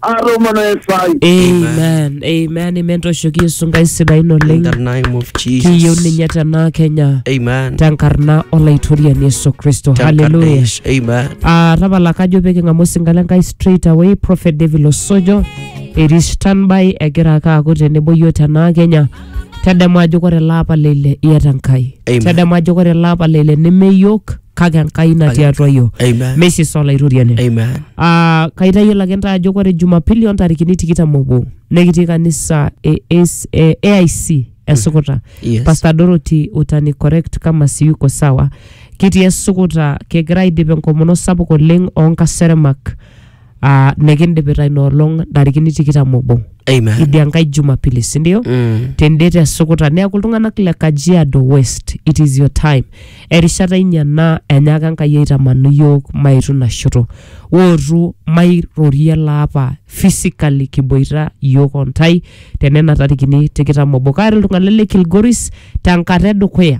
atomana esai amen amen amen toshoki yesu nkai sidain In the oleng name of kiyieu Jesus. ninye tenaa kenya Amen. tenkarna olaitoriani yesu kristo haleluya Tankarnish. Amen. Ah, tapala kajo pee king'amu osinka le nkai straight away prophet david osojo etii standby egira ake aaku tenebo yiok tenaa kenya tadamu ajo kore ele apa leile iata nkai Amen. tadamu ajo kore ele apa leile neme yiok kake enkai natii atua yiok Amen. mesis olaitoriani Amen. Ah, kaitayiolo ake ntae ajo ore jumapili ontarikini tikitam obo nekitii kanisa e, AS e aic esukuta Yes. pastor dorothy utani correct kama siyuko sawa kitii esukuta kigira aidip enkomono sapuk oleng onkaseremak uh, nikindipita ina olong ntarikini tikitam obo Amen. idia nkae jumapili sindio Mm. tende te sukuta neeku iltung'anak le kajiado west it is your time erishata inyi ena enyaaka enkai aitamanu yiok maitu ina shoto wootu mairorie laapa physically kiboita yiok ontai tenena tarikini tikitam obo kaata iltung'anak le kilgoris tenkata edukuya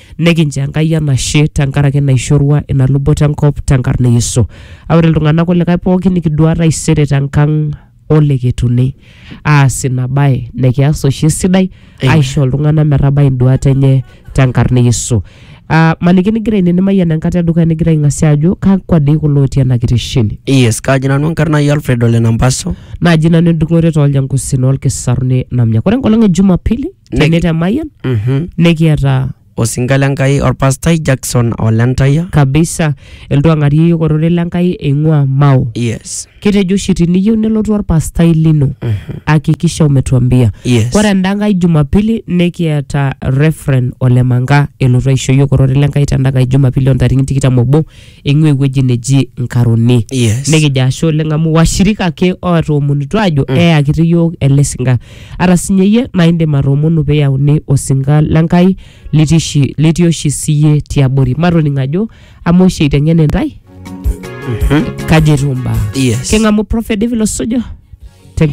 Nikincho Enkai enashe tenkaraki naishorua ina luboto enkop tenkarna e Yesu. Aa ore iltung'anak kulikae pooki nikiduaa taisere tenkang oleketuni aas ina bae nikias oshi esidai Amen. aisho iltung'anak metabai induat enye tenkarna e Yesu. Aa maniki nigira ine nimayian enkata edukuya nigira aing'asia ajo kakwa dii kulo otii ena kitesheni. Yes, kaaji nanu enkarna ai Alfred Ole Nampaso. naaji nanu endung'ore tooljankusin olkisaruni namnya. Ore enkolong e Jumapili Niki- tene te Mayian Mhm. nikiata osinka le Nkai orpastai Jackson Olentaya. kabisa iltuang'ari yiok ororei le Nkai eing'ua Mao. Yes. Kitejo oshi tiniyieu nelotu orpastai lino hakikisha umetuambia. Yes. Ore enda nkae Jumapili nikiata Reverend Olemanga elotu aisho yiok ororei le Nkai tenda nkae Jumapili o ntarikini tikitam obo eing'ua ewueji neji Nkaroni. Yes. Nikijo ashe oleng amu washirika ake ootoomonutuo aajo mm. eyakiti iyiook ele sinka. Ata sinye iyie naa indim atoomonu pee eyauni osinka le Nkai litii oshi- litii oshi siyie tiabori. Matoning ajo amu oshi eiteng'en intae kaji etiu imbaa. Yes. King'amu Prophet David Losujo